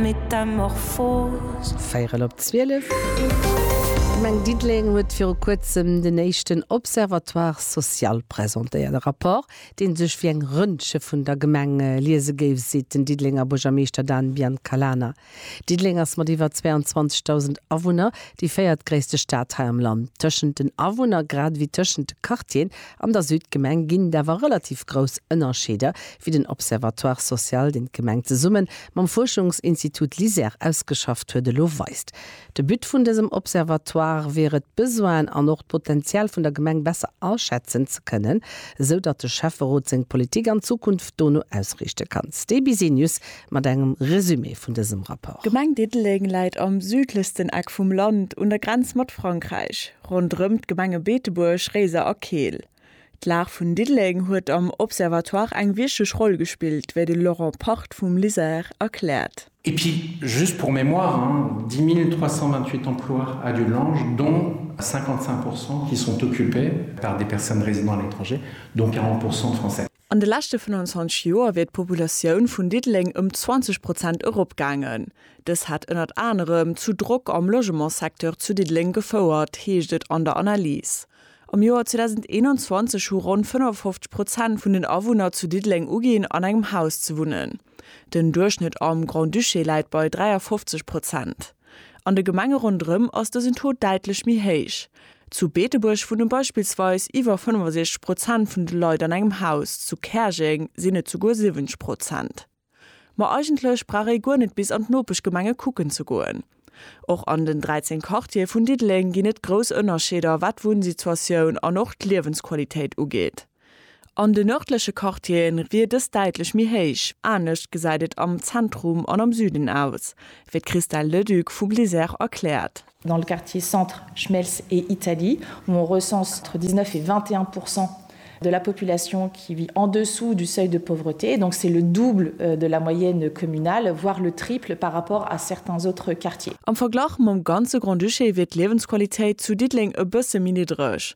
Metamorphose. Véierel op zwielef. D'Gemeng Diddeleng huet viru kuerzem den éischten Observatoire social presentéiert. E Rapport, dee sech wéi eng Röntge vun der Gemeng liese géif, seet den Diddelenger Buergermeeschter Dan Biancalana. Diddeleng ass mat iwwer 22.000 Awunner déi véiertgréisste Stad hei am Land. Tëschent den Awunner, grad ewéi tëschent de Quartieren, An der Südgemeng ginn et awer relativ grouss Ënnerscheeder, wéi den Observatoire social, deen d'Gemeng zesumme mam Fuerschungsinstitut LISER ausgeschafft huet, elo weist. De But vun dësem Observatoire wier et, d'Besoinen an och d'Potenzial vun der Gemeng besser aschätzen ze kënnen, esou datt de Schäfferot seng Politik an Zukunft dono ausriichte kann. StBsenius mat engem Resumé vun dësem Rapport. D'Gemeng Diddeleng läit am südlechsten Eck vum Land, un der Grenz mat Frankräich. Ronderëm d'Gemenge Beetebuerg, Réiser a Keel. D'Lag vun Diddeleng huet am Observatoire eng wichteg Roll gespillt, wéi de Laurent Part vum LISER erkläert. Et puis, juste pour mémoire, 10 328 emplois à Dudelange, dont 55 pourcent qui sont occupés par des personnes résidant à l'étranger, dont 40 pourcent de Français. An de leschte 25 Joer wier d'Populatioun vun Diddeleng ëm 20 Prozent eropgaangen. Dës hätt ënnert anerem zu Drock am Logementssecteur zu Diddeleng gefouert, heescht et an der Analys. Am Joer 2021 hu ronn 55 Prozent vun den Awunner zu Diddeleng uginn, an engem Haus ze wunnen. Den Duerchschnëtt am Grand-Duché läit bei 53 Prozent. An de Gemenge ronderëm ass dësen Taux däitlech méi héich. Zu Beetebuerg wunne beispillsweis iwwer 65 Prozent vun de Leit an engem Haus, zu Käerjeng sinn et souguer 70 Prozent. Ma eigentlech brauch ee guer net bis an d'Nopeschgemenge kucken ze goen. Och an den 13 Quartiere vun Diddeleng ginn et grouss Ënnerscheeder, wat d'Wunnsituatioun an och d'Liewensqualitéit ugeet. An de nërdleche Quartiere wier dës däitlech méi héich, anescht gesäit et am Zentrum an am Süden aus, wéi d'Christelle Leduc vu Blizzère erkläert. Dans le quartier centre, Schmelz et Italie, où on recense entre 19 et 21 pourcent de la population qui vit en dessous du seuil de pauvreté, donc c'est le double de la moyenne communale, voire le triple par rapport à certains autres quartiers. Am Verglach mam ganze Grand-Duché wier d'Liewensqualitéit zu Diddeleng e bësse méi niddreg.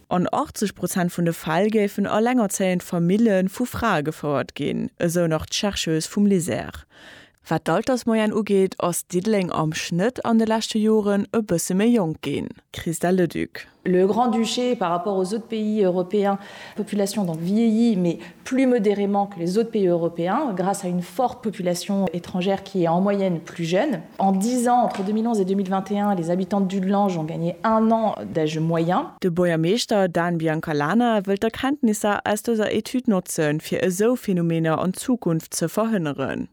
An 80 Prozent vun de Fäll géifen elengerzéiend Famille vu Frae gefouert ginn, esou nach d'Chercheuse vum LISER. Wat d'Altersmoyenne ugeet, ass Diddeleng am Schnëtt an de leschte Joren e bësse méi jonk ginn. Christelle Leduc. Le Grand-Duché par rapport aux autres pays européens, population donc vieillit mais plus modérément que les autres pays européens, grâce à une forte population étrangère qui est en moyenne plus jeune. En dix ans, entre 2011 et 2021, les habitants de Dudelange ont gagné un an d'âge moyen. De Buergermeeschter Dan Biancalana wëllt d'Erkenntnisser aus dëser Etüd notze fir esou Phänomener an Zukunft ze verhënneren.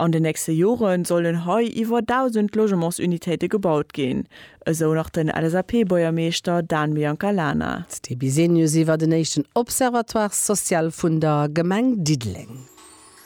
An den nächste Jore sollen hei iwwer 1.000 Logementsunitéite gebaut ginn, esou nach den LSAP-Buergermeeschter Dan Biancalana. D'Sté Bisenius iwwer den éischten Observatoire social vun der Gemeng Diddeleng.